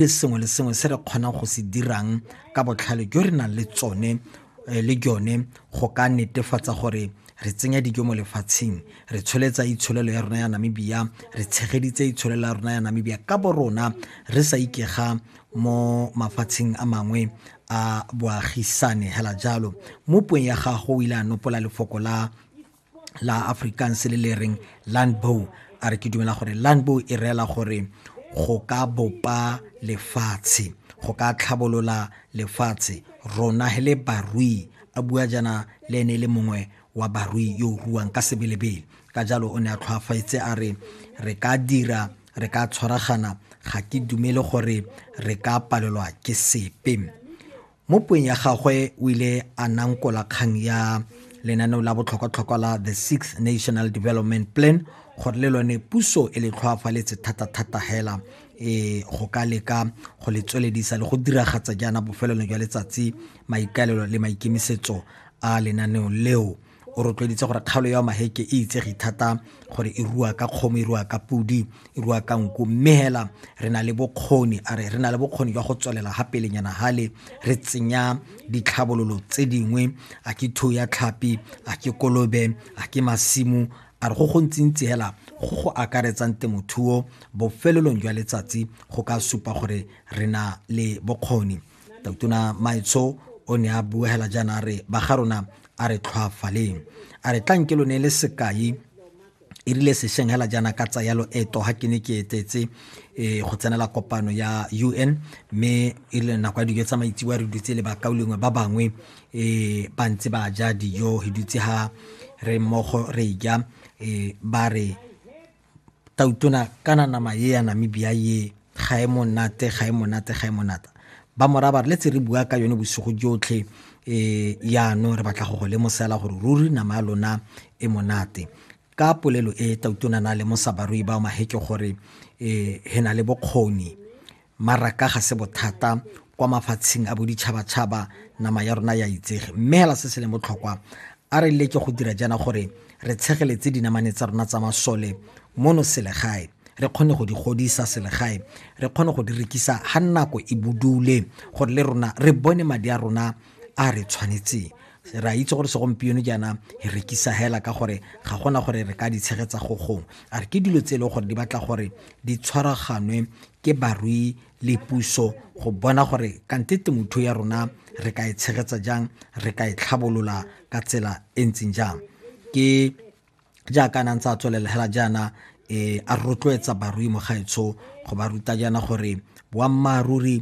le sengwe le sengwe se re kgonang go se dirang ka botlhale jo re nang le tsone eh, le jone go ka netefatsa gore re tsenya dijo mo lefatsheng re tsholetsa itsholelo ya rona ya namibia re tshegeditse itsholelo ya rona ya namibia ka bo rona re sa ikega mo mafatsheng a mangwe a boagisane hela jalo mo puong ya gago o ile a nopola lefoko la la afrikaans le le reng landbow a re ke dumela gore landbow e reela gore go ka bopa lefatshe go ka tlhabolola lefatshe rona he le barui a bua jana le ene e le mongwe wa barui yo o ruang ka sebelebele ka jalo o ne a tlhwafaetse a re re ka dira re ka tshwaragana ga ke dumele gore re ka palelwa ke sepe mo puong ya gagwe o ile a nankola kgang ya lenaneo la botlhokwatlhokwa la the sixth national development plan gore le lone puso e le tlhoafaletse thata-thata hela e go ka leka go le tsweledisa le go diragatsa jaana bofelelo jwa letsatsi maikaelelo le maikemisetso a lenaneo leo o rotloeditse gore kgaolo ya maheke e itsege thata gore e rua ka kgomo e rua ka podi e rua ka nku mme hela re na le bokgoni a re re na le bokgoni jwa go tswelela ga pelenyana hale re tsenya ditlhabololo tse dingwe a ke thuo ya tlhapi a ke kolobe a ke masimo a re go gontsintsi hela go go akaretsang temothuo bofelelong jwa letsatsi go ka supa gore re na le bokgoni totona maitsho o ne a buegela jaana a re ba ga rona a re tlhwaafaleng a re tlanke lo ne le sekai e rile sešeng hela jaana ka tsaya loeto ga ke ne ke etetse um go tsenela kopano ya u n mme e rile nako ya dijo tsa maitsiwa re dutse le bakao lengwe ba bangwe um ba ntse ba ja dijo re dutse ga re mmogo re ja um ba re tautona kana nama ye ya namibia ye ga e monate ga e monate ga e monata ba moraba re letse re bua ka yone bosigo jotlhe um yaanong re batla go go lemosela gore ruri nama ya lona e monate ka polelo e tautona na lemosa barui ba maheke gore um he na le bokgoni Maraka ga se bothata kwa mafatsheng a boditšhabatšhaba nama ya rona ya itsege mme hela se se leng botlhokwa a re leke go dira jaana gore re tshegeletse dinamane tsa rona tsa masole mono selegae re kgone go di godisa selegae re kgone go di rekisa ga nako e budule gore le rona re bone madi a rona a re tshwanetseng re a itse gore segompieno jaana e rekisa hela ka gore ga gona gore re ka di tshegetsa go gong a re ke dilo tse e leng gore di batla gore di tshwaraganwe ke barui le puso go bona gore kante temothuo ya rona re ka e tshegetsa jang re ka e tlhabolola ka tsela e ntseng jang ke jaaka a nang tsa tswelela hela jaana um a rotloetsa barui mo gaetsho go ba ruta jaana gore boammaaruri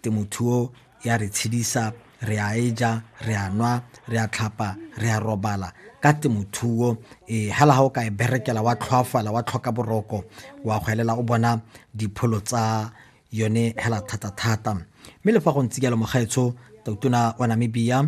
temothuo ya re tshedisa re a e ja re a nwa re a tlhapa re a robala ka temothuo um eh, hela ga o ka e berekela wa tlhoafala wa tlhoka boroko wa go elela o bona dipholo tsa yone hela thata-thata mme le fa go ntse jalo mogaetsho tautona wa namibia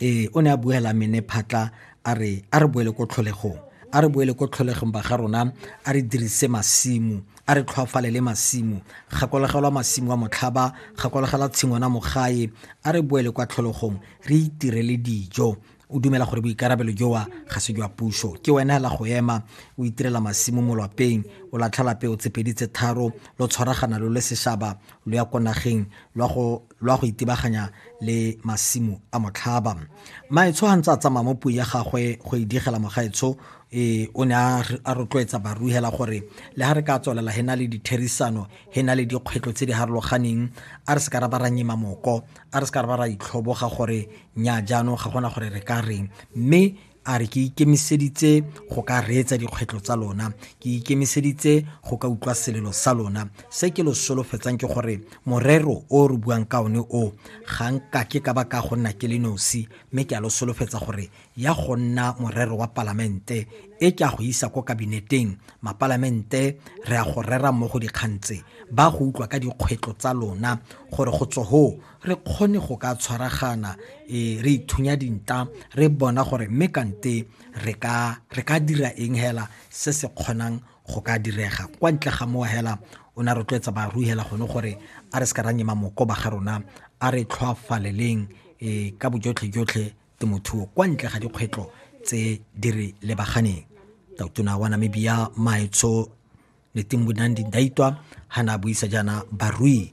ee o ne a buela mene phatla a re a re boele ko tlholegong a re boele ko tlholegong ba ga rona a re dirise masimo a re tlhwafalele masimo gakologelwa masimo a motlhaba gakologela tshingwana mogae a re boele kwa tlholegong re itirele dijo o dumela gore boikarabelo jowa ga se jwa puso ke wena hela go ema o itirela masimo mo lwapeng o latlhela peo tsepedi tse tharo lo tshwaragana lo le seshaba lo ya ko nageng lwa go lwa go itebaganya le masimo a motlhaba maetsho ga ntse a tsamaya mo puo ya gagwe go e digela mogaetsho e o ne a rotloetsa baruhela gore le ga re ka tswelela he na le ditherisano he na le dikgwetlho tse di harologaneng a re se ka ra ba ra nyima moko a re se ka ra ba ra itlhoboga gore nya jaanong ga gona gore re ka reng mme A re, Ke ikemiseditse go ka reetsa dikgwetlho tsa lona. Ke ikemiseditse go ka utlwa selelo sa lona. Se ke lo solofetsang ke gore morero o re buang ka one o, ga nka ke ka ba ka go nna ke le nosi, mme ke a lo solofetsa gore ya go nna morero wa Palamente, e ke a go isa ko Kabineteng, Mapalamente re a go rera mmogo dikgang tse, ba go utlwa ka dikgwetlho tsa lona gore go tswa hoo re kgone go ka tshwaragana e re ithunya dinta re bona gore mme kante re ka re ka dira eng hela se se kgonang go ka direga kwa ntle ga mowa hela o ne a rotloetsa baru hela gone gore a re se ka ra nyema moko ba ga rona a re tlhoafaleleng e ka bojotlhe jotlhe temothuo kwa ntle ga dikgwetlho tse di re lebaganeng tautona wa namibia maetsho netimbo nandi ndaitwa ha na buisa jaana barui